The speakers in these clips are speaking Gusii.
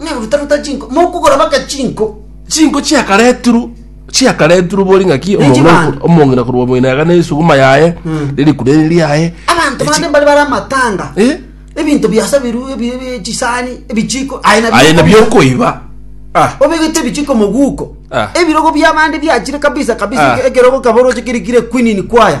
Ng'a rutaruta chinko, mokogora baka chinko. Chinko chiakaretirwe chiakaretirwe bori ng'a ki Nechi omong'ina bande. oku- omong'ina korwa moino yaga nesuguma yaye Mm. nerikure riri riaye Abanto Echi- bande mbare bare amatanga. Eh? Ebinto biasabirwe ebi- ebi- chisani, ebichiko, aye nabio aye nabio okomia. okoiba Ah, obegete ebichiko moguko Ah. ebirogo biabande biachire kabisa kabisa Ah. eke- ekerogo kaba oroche kirikire kwinini kwaya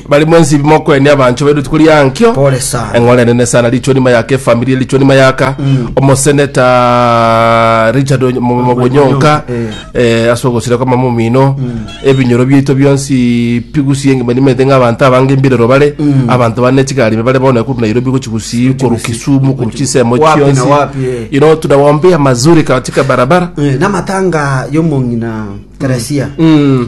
Bari mwensi bi mokoenia abanchwa baino rituko ria nkio. Pole sana. Eng'ora enene sana richo nima yaka efamiri richo nima yaka omoseneta Richard Onyo- Mo- Mo- Onyonka eh, ase ogosira kwa mama omino ebinyoro biaito bionsi pigusi engima nimete ng'a abanto abange mbirero bare abanto bane chigari bare bono kuru Nairobi gochigusi koru Kisumu koru chisemo Wapi na chionsi wapi, eh. you know tunawaombea mazuri katika barabara Eh, namatanga yomong'ina teresia Mm.